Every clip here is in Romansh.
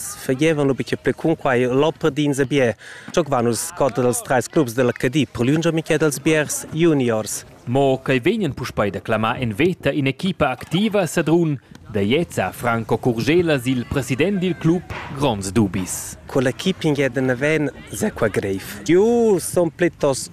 fagevan lu bica pli cun quei loppardins e bier. Giocavan nus scotta dals treis clubs della Cadi per lungia mica dals biers juniors. Mo quei vegnan puspei da clamar en veta in'equipa activa Sadrun da Jeza Franco Curgela sil president dil club Gronds dubis. Con l'equipa in naven se qua greif. Jeu son plitost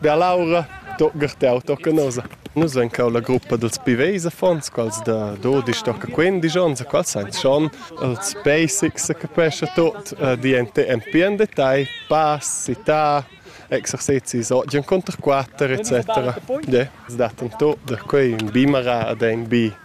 Bia Laura, tocca teu, tocca nosa. Nus ein cau la gruppa dils Piveis affons, quals da dodisch tocca quindisch onns, quals ein schon els basics, capescha tot, di en en detail, pass, città, exercizis oggi en conter quatter, etc. Ja, dat en tot da quei in bimara ad ein bi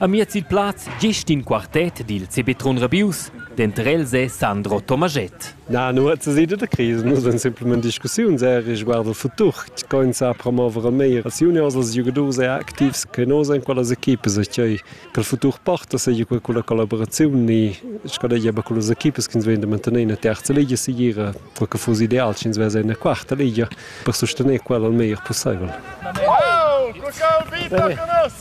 Amiez il plaz gest in quartet dil CB Trun Rabius, denter els è Sandro Tomaschett. Na, nuot sesida da crisi, nus en simplament discussiun ser riguard il futur, tgei sa promover meir als juniors, als giugadurs e activs che nos en quellas equipas, cei che il futur porta seigi quella con la collaboraziun e scadegia be con las equipas che ins vegn da mantener in terza ligia sigira, quel che fuss ideal, sch'ins vess en quarta ligia per sustener quella il meglier possibel. Wow, Crocão, vita con us!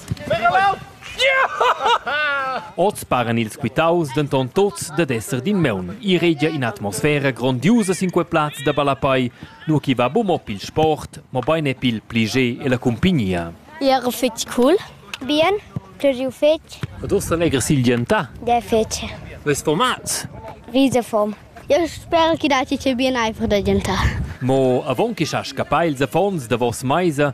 Oz paran ils quitaus denton tuts dad esser d'in meun. I regia in'atmosfera grondiusa sin quei plaz da ballapei, nur chi va buc mo pil sport, mobein e pil pliger e la cumpignia. Era fetg cool. Bien, pluriu fetg. Ed ussa legher silgientà? Der fetg. Ves format? Visa form. Eu sper chi datti che bien ei per da gentar. Mo avon che sa scappar ils affons davos meisa,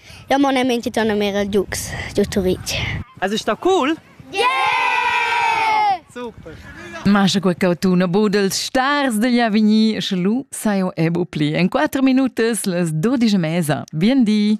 Jau mon a mintgitonamera Dux giu Turitg. Es ist da cool? Yeah! Super! Mascha qua cautuna budels stars degli Avigny, sche lu saio ebu pli. En 4 minutas les 12 mesa. Bien di!